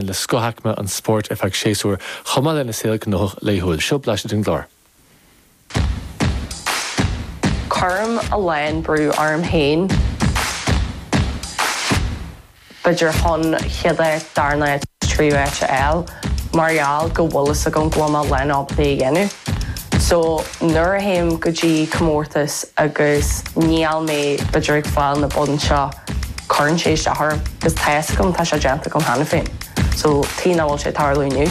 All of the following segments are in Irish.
le scothaicme an spóirt ar feadh séasúir, chomh maith lena saol gnóthach laethúil. Seo blaiseadh den gclár. Cuirim a lán brú orm féin, b'fhéidir chun céad áit, darna áit, tríú áit a fháil mar gheall go bhfuil fhios agam go bhfuil mé ag a lán obair a dhéanamh. So nuair a théim go dtí comórtas agus níl mé b'fhéidir ag fáil na boinn seo, Cuireann sé isteach orm. Is tá a fhios agam, tá sé déanta agam cheana féin. So, cén chaoi nach bhfuil sé ag tarlú inniu?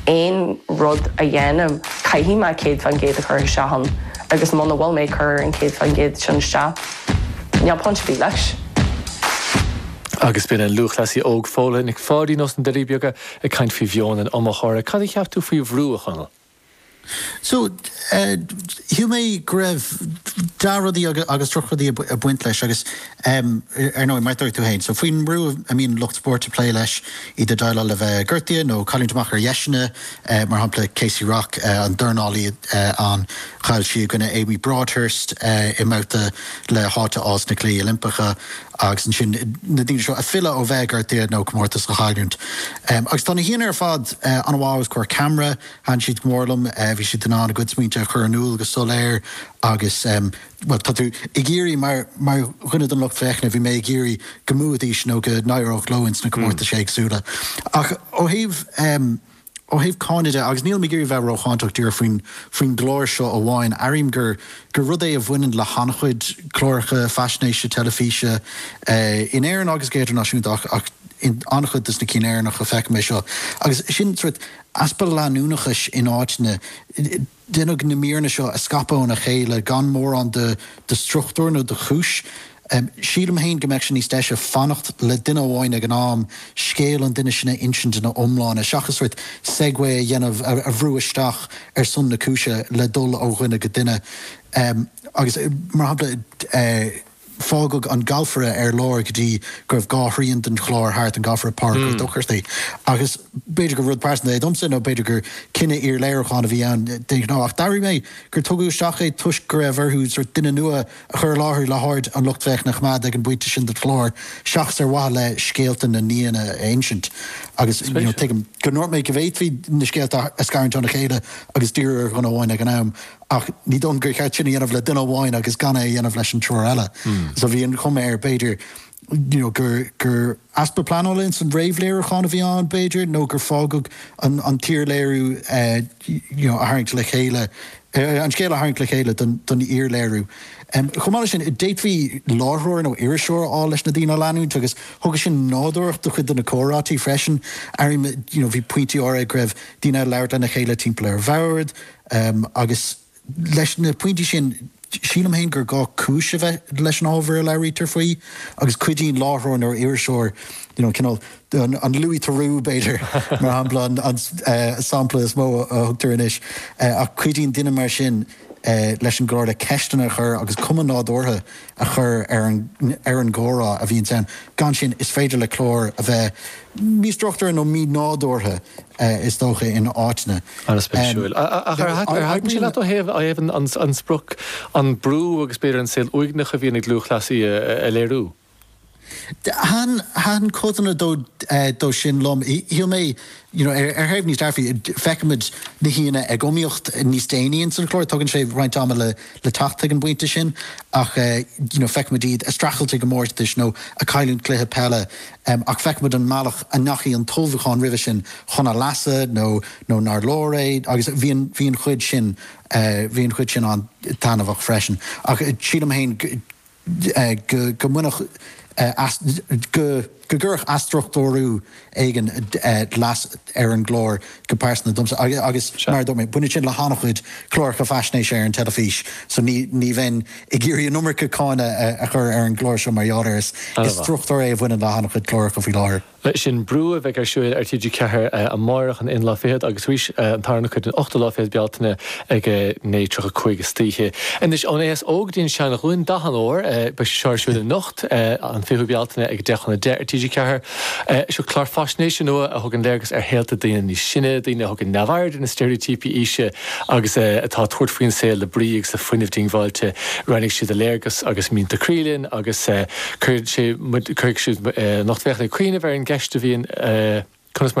Aon rud a dhéanaim, caithfidh mé céad fán gcéad a chur isteach ann agus muna bhfuil mé ag cur an céad fán gcéad sin isteach, níl point ar bith leis. Agus b'in an lúthchleasaí óg Fódhla Nic Pháidín ós na Doirí Beaga ag caint faoi mheon an iomaitheora. Cad a cheap tú faoi bhrú, a Chonaill? So, shíl mé go raibh dea rudaí agus droch rudaí ag baint leis agus, ar ndóigh, mar a dúirt tú féin, so faoin mbrú a mbíonn lucht spóirt ag plé leis, iad ag déileáil le bheith gortaithe nó cailliúint amach ar dheiseanna, mar shampla Kaci Rock, an dornálaí ann, chaill sí i gcoinne Amy Broadhurst i mbabhta le háit a fháil sna Cluichí Oilimpeacha, agus ansin na daoine seo ag filleadh ó bheith gortaithe nó comórtas a chailliúint. Agus tá na haíonna ar fad an-mhaith os comhair ceamara, thaitin siad go mór liom, bhí siad in ann a gcuid smaointe a chur in iúl go soiléir agus, bhuel, tá tú ag iarraidh, mar dhuine den lucht féachana, bhí mé ag iarraidh go mbuafaidís nó go n-éireodh leo ins na comórtais éagsúla. Ach ó thaobh. ó thaobh cáineadh de, agus nílim ag iarraidh bheith rócháinteach, díreach faoin faoin gclár seo amháin, airím gur rud é a bhaineann le han-chuid cláracha faisnéise teilifíse in Éirinn agus go hidirnáisiúnta, ach in an-chuid de na cinn Éireannacha feicim é seo, agus sin sórt easpa leanúnachais in áiteanna. Deineadh na míreanna seo a scaipeadh óna chéile gan mórán de struchtúr nó de chúis. Sílim féin go mbeadh sé níos deise fanacht le duine amháin ag an am, scéal an duine sin a insint ina iomláine, seachas sórt segue a dhéanamh, a bhrú isteach ar son na cúise le dul ó dhuine go duine. Agus, mar shampla. fágadh an galfaire ar lár go dtí go raibh dhá thrian den chlár thart, an galfaire Pádraig Ó Dochartaigh, agus b'fhéidir gur rud pearsanta é domsa nó b'fhéidir gur cinneadh iar-léiriúcháin a bhí ann d'aon ghnó ach d'airigh mé gur tugadh isteach é toisc go raibh orthu sórt duine nua a chur i láthair le haird an lucht féachana a choimeád ag an bpointe sin den chlár seachas ar mhaithe le scéalta na n-aíonna a insint agus tuigim go ndúirt mé go bhféadfaí na scéalta a scarúint óna chéile agus díriú ar dhuine amháin ag an am. Ach ní dóigh liom gur cheart sin a dhéanamh le duine amháin agus gan é a dhéanamh leis an triúr eile. So bhí an chuma air, b'fhéidir, you know gur, gur easpa pleanála ins an réamhléiriúchán a bhí ann, b'fhéidir, nó gur fágadh an, an t-iarléiriú eh you know a tharraingt le chéile, eh an scéal a tharraingt le chéile don, don iarléiriú. Em chomh maith leis sin, d'fhéadfaí láithreoir nó iriseoir a fháil leis na daoine a leanúint agus thugadh sin nádúrthacht do chuid de na comhráití freisin. Airím you know bhí pointí áirithe go raibh daoine ag labhairt lena chéile timpeall ar bhord, Um, agus leis na pointí sin, sílim féin gur gá cúis a bheith leis an ábhar a labhraítear faoi, agus cuidíonn láithreoir nó iriseoir, you know, cineál an, an Louis Theroux, b'fhéidir, mar shampla, an, an eh, sampla is mó a thugtar anois, eh, ach cuidíonn duine mar sin eh, leis an gclár le ceisteanna a chur agus cuma nádúrtha a chur ar an gcomhrá a bhíonns ann. Gan sin, is féidir le clár a bheith místruchtúrtha nó mínádúrtha, is dócha, in áiteanna. An-spéisiúil. Ach ar thaitin sé leat ó thaobh an sprioc, an brú agus b'fhéidir an saol uaigneach a bhíonn ag lúthchleasaí a léiriú? Thaithin codanna dó sin liom. Shíl mé, you know, ar thaobh níos dearfaí, feicimid na haíonna ag iomaíocht níos déanaí ins an chlár, tógann sé roinnt ama le teacht chuig an bpointe sin, ach, you know, feicimid iad a' streachailt i gcomórtais nó a' cailliúint cluiche peile, ach feicimid an mbealach a ndeachaigh an t-ullmhúchán roimhe sin chun a leasa nó, nó nár leor é agus bhí an, bhí an chuid sin, bhí an chuid sin an-taitneamhach freisin. Ach sílim féin go. go gcuirfeadh athstruchtúrú éigin leas ar an gclár go pearsanta domsa agus, mar a dúirt mé, baineann sin le han-chuid cláracha faisnéise ar an teilifís so ní bheinn ag iarraidh an iomarca cáineadh a chur ar an gclár seo mar gheall air. Is struchtúr é a bhaineann le han-chuid cláracha faoi láthair. Leis sin, Brú a bheidh ar siúl ar TG4 amárach an aon lá fichead agus arís an tarna cuid an ochtú lá fichead Bealtaine ag 9:35 istoíche. Anois ón aos óg go dtí an seanghlúin, Dath an Óir, beidh sé seo ar siúl anocht, an 20ú Bealtaine ag 10 chun 10 ar TG4. Seo clár faisnéise nua a thugann léargas ar shaolta daoine níos sine, daoine a thugann neamhaird ar na steiréitíopaí aoise agus atá ag tabhairt faoin saol le brí agus le fuinneamh diongbháilte. Roinnfidh siad a léargas agus mianta croí linn agus. Cuirfidh siad an lucht féachana ag cuimhneamh ar an gceist a bhíonn conas mar a.